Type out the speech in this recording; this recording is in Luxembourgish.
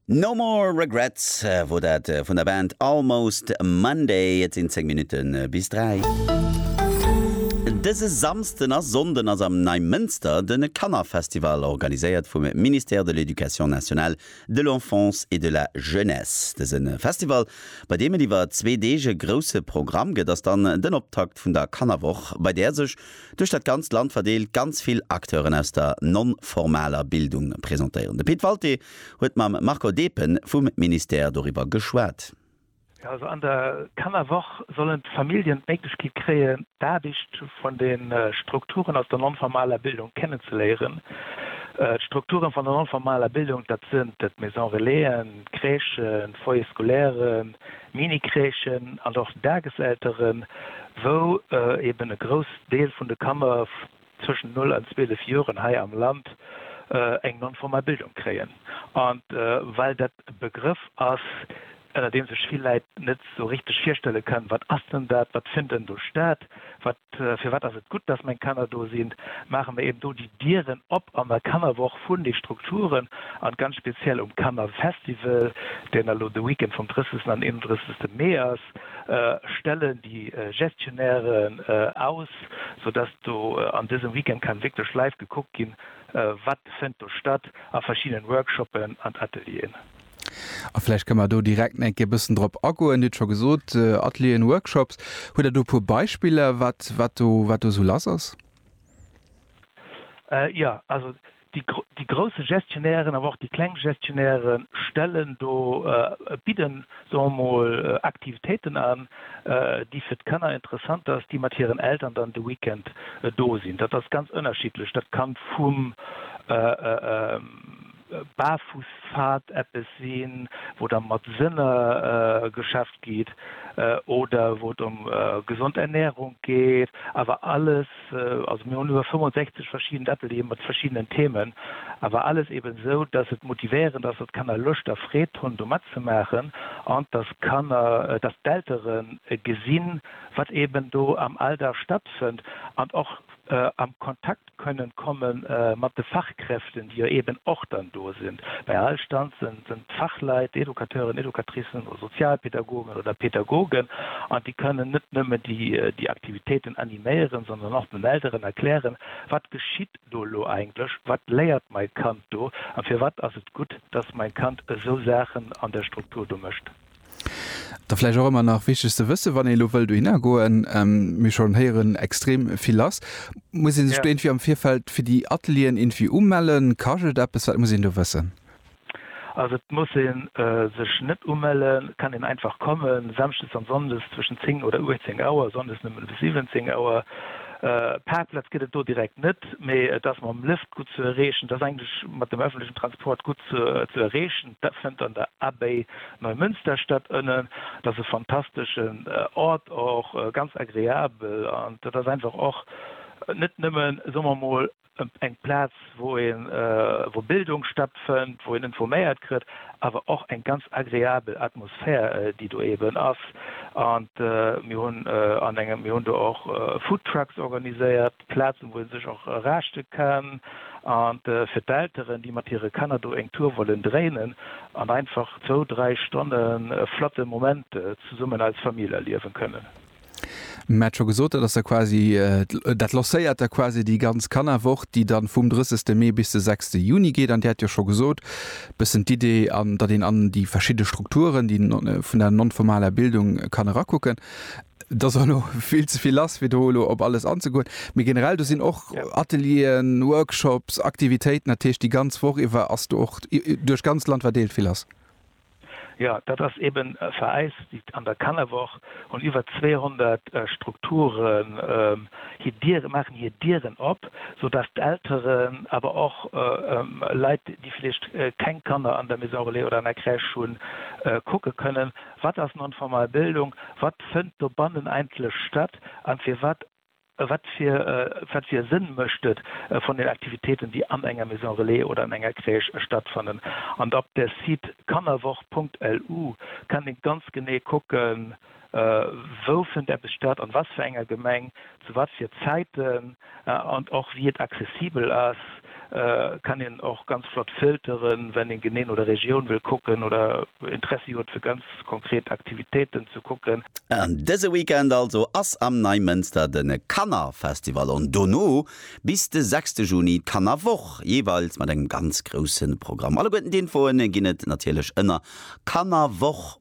No More Regrets wor dat vun der Band Almost Monday. Et sinn 10 Minutte bis 3. Dëse Samsden a Sonnden ass am Neimënster den Kannerfestival, organiséiert vum Ministère de l'Éducation nationale, de l'Enfance et de la Jeunesse. Dësen Festival, bei deem et iwwer zwee Deeg e grousse Programm gëtt, ass dann den Optakt vun der Kannerwoch, bei där sech duerch dat ganzt Land verdeelt, ganz vill Acteuren aus der non-formaler Bildung presentéieren. De Pit Walté huet mam Marco Depen vum Ministère doriwwer geschwat. Jo, also an der Kannerwoch sollen d'Familljen d'Méiglechkeet kréien, d'Aarbecht vun de Strukturen aus der non-formaler Bildung kennenzeléieren. D'Strukturen vun der non-formaler Bildung, dat sinn d'Maison-relaisen, d'Crèchen, d'Foyers scolaires, Mini-Crèchen an och Dageselteren, wou eben e groussen Deel vun de Kanner zwëschen 0 an 12 Joren hei am Land eng non-formal Bildung kréien. An well dat e Begrëff ass, ënner deem sech vill Läit net sou richteg virstelle kënnen, wat ass denn dat, wat fënnt denn do staat, wat Firwat ass et gutt, dass meng Kanner do sinn? Maache mer eben do déi Dieren op an der Kannerwoch vun de Strukturen an ganz speziell um Kannerfestival, deen elo de Weekend vum 30 an 31 Mee ass, stellen déi Gestionnairen aus, sou dass do an dësem Weekend kann wierklech live gekuckt ginn, wat fënnt do statt a verschiddenen Workshoppen an Atelieren. A vläicht kënne mer do direkt nach eng Kéier e bëssen drop agoen. Dir hutt scho gesot, Atelieren, Workshops. Hutt Der do e puer Beispiller, wat, wat do, wat do esou lass ass? Jo, also déi, déi grousse Gestionnairen, awer och déi kleng Gestionnaiere stellen do, bidden, soe mer mol, Aktivitéiten an, déi fir d'Kanner interessant ass, déi mat hiren Eltern dann de Weekend do sinn. Dat ass ganz ënnerschiddlech. Dat kann vum, Baarfussfahrt eppes sinn, wou da mat Sënner geschafft gitt oder wou et ëm gesond Ernährung geet, awer alles, also mir hunn iwwer 65 verschidden Atelieren mat verschiddenen Themen, awer alles eben esou, dass et motivéierend ass, dass d'Kanner Loscht a Freed hunn do matzemaachen an dass d'Kanner, dass d'Eltere gesinn, wat eben do am Alldag stattfënnt an och am Kontakt. kënnen komme mat de Fachkräften, déi jo eeben och dann do sinn. Bei all Stand sënn d'Fachleit, Educateuren, Educatricen oder Sozialpädagogen oder Pädagogen an déi kënnen net nëmmen déi Aktivitéiten animéieren, sondern och den Elteren erklären, wat geschitt do elo eigentlech, wat léiert mai Kand do a firwat ass et gutt, dass mai Kand esou Saachen an der Struktur do mécht. Da vläicht och ëmmer nach wichteg ze wëssen, wann ee elo wëll dohinner goen, mir schonn héieren, extrem vill ass, Muss ee sech do irgendwie am Virfeld fir déi Atelieren irgendwie umellen? Kascht et eppes? Wat muss een do wëssen? Also et muss ee sech net umellen, et kann een einfach kommen, samschdes an sonndes zwëschen 10 oder 18 Auer, sonndes nëmmen bis 17 Auer. Parkplatz gëtt et do direkt net, mee et ass mam Lëft gutt ze erreechen, et ass eigentlech mat dem ëffentlechen Transport gutt ze erreechen. Dat fënnt an der Abbaye Neumünsterstadt ënnen, dat ass e fantasteschen Ort, och ganz agreabel an dat ass einfach och net nëmmen, soe mer emol, eng Plaz, wou een, wou Bildung stattfënnt, wou een informéiert kritt, awer och eng ganz agreabel Atmosphär, déi do eeben ass. An mir hunn an engem, mir hunn do och Foodtrucks organiséiert. Plazen, wou ee sech och raschte kann, a fir d'Elteren, déi mat hire Kanner do eng Tour wollen dréinen an einfach zwou, dräi Stonne e flotte Moment zesummen als Famill erliewen kënnen. Mir hat scho gesot, dat ass da quasi, dat lancéiert da quasi déi ganz Kannerwoch, déi dann vum 30 Mee bis de 6 Juni geet. An Dir hat jo scho gesot, e bëssen d'Idee, datt een an déi verschidde Strukturen, déi vun der non-formaler Bildung kann erakucken. Et ass elo vill ze vill lass, fir do elo op alles anzegoen. Mee generell, do sinn och Atelieren, Workshops, Aktivitéiten, dat heescht, déi ganz Woch iwwer ass do och duerch d'ganzt Land verdeelt vill lass? Jo, dat ass eeben vereist. Déi an der Kannerwoch hunn iwwer 200 Strukturen hir Diere, maachen hir Dieren op, soudatt d'Elteren, awer och Leit, déi vläicht keng Kanner an der Maison Relais oder an der Crèche hunn, kucke kënnen. Wat ass non-formal Bildung, wat fënnt dobannen eigentlech statt a firwat, wat fir wat fir e Sënn mécht et von den Aktivitéiten, déi an enger Maison Relais oder an enger Crèche stattfannen? An op der Site kannerwoch.lu kann ee ganz genee kucken, wou fënnt eppes statt, an wat fir enger Gemeng, zu wat fir Zäiten. An och wéi et accessibel ass, kann een och ganz flott filteren, wann een genee no der Regioun wëll kucken oder Interessi huet fir ganz konkret Aktivitéiten ze kucken. An dëse Weekend also ass am Neimënster de Kannerfestival an dono bis de 6 Juni d'Kannerwoch, jeeweils mat engem ganz grousse Programm. Alleguerten d'Infoen ginn et natierlech ënner kannerwoch.